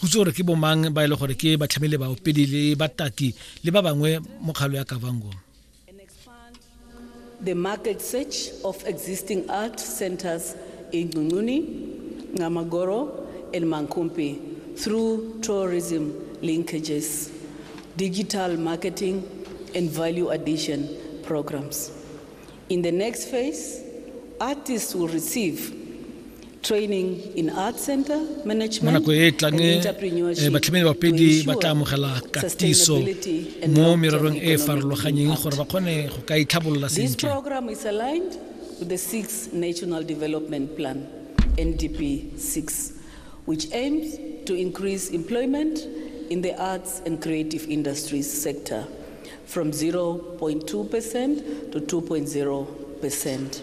go itse gore ke bomang ba e le gore ke batlhamele baopedi le bataki le ba bangwe mo kgalo ya kavango the market search of existing art centers in Ngununi, Namagoro, and Mankumpi through tourism linkages, digital marketing, and value addition programs. In the next phase, artists will receive training in art center management mo nako e e tlang eh, eh, batlhamedi bapedi ba tla amogela katiso mo mererong e e farologanyeng gore ba kgone go ka itlhabolola sentle program is aligned with the six national development plan ndp 6 which aims to increase employment in the arts and creative industries sector from 0.2% to 2.0%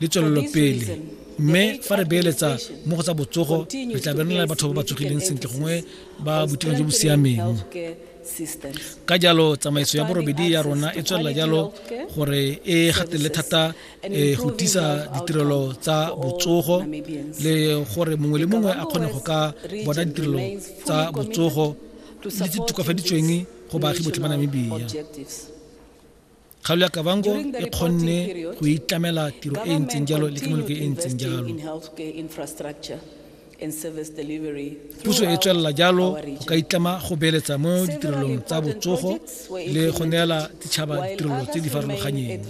le tswelelopele mme fa re beeletsa mo go tsa botsogo re tla benelela batho ba ba tsogileng sentle gongwe ba boitekanelo jo bo siameng ka jalo tsamaiso ya borobedi ya rona e tswelela jalo gore e gatelele thata eh, go tisa ditirelo tsa botsogo le gore mongwe le mongwe a kgone go ka bona ditirelo tsa botsogo le tse tokafaditsweng go baagi botlhe ba namibia Kgaolo ya Kavango e kgonne go itlamela tiro e e ntseng jalo le tshimologo e e ntseng jalo. Puso e tswelela jalo go ka itlama go beeletsa mo ditirelong tsa botsogo le go neela ditšhaba ditirelo tse di farologanyeng.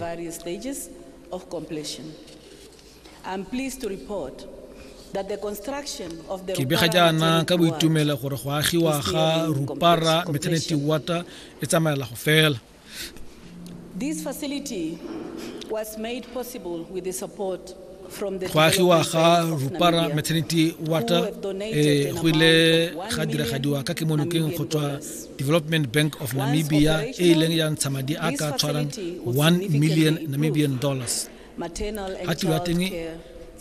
ke bega jaana ka boitumelo gore go agiwa ga rupara maternity water e tsamaela go fela This facility was made possible with the support go agiwa ga rupara maternity water e go ile ga diragadiwa ka kemonokeng go tswa development bank of namibia e e leng ya ntsha madi a ka tshwarang 1 million namibian dollars ga tiro ya teng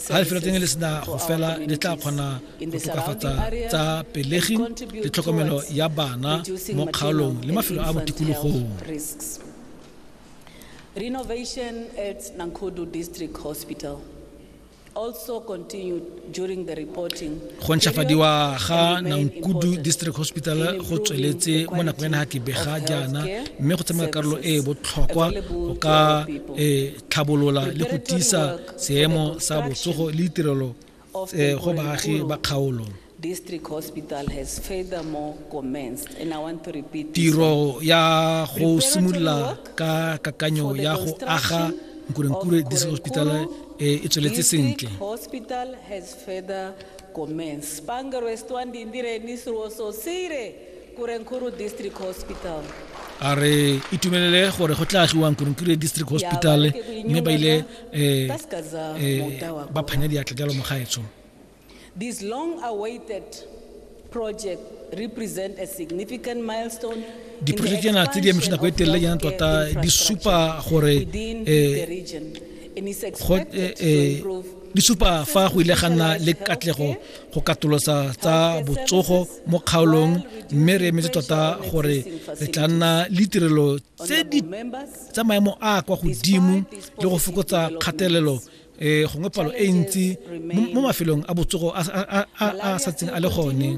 ga lefelo teng le sena go fela le tla kgona go tokafatsa tsa pelegi le tlhokomelo ya bana mo kgaolong le mafelo a botikologong Renovation at Nankodu District Hospital also continued go ntšhafadiwa ga nankudu district hospital go tsweletse mo nakong ya naga ke bega jaana mme go tsamaya karolo e e botlhokwa go ka e tlhabolola le go tiisa seemo sa botsogo le ditirelo eh, go baagi ba kgaolo district hospital has furthermore commenced and i want to repeat tiro ya go simolola ka kakanyo ya go aga nkurenkure this hospital e e tsweletse sentle a re itumelele gore go tla agiwa nkurenkure district hospital mme ba ile um ba phanya diatla jalo mogaetsho This long-awaited project represents a significant milestone diprojeke na tse di amišana go etelela yana tota di supa gore di supa fa go ile ga nna le katlego go katolosa tsa botsogo mo kgaolong mme re emetse tota gore re tla nna le tirelo tse di tsa maemo a kwa godimo le go fokotsa kgatelelo um gongwe palo e ntsi mo mafelong a botsogo a sa tseng a le gone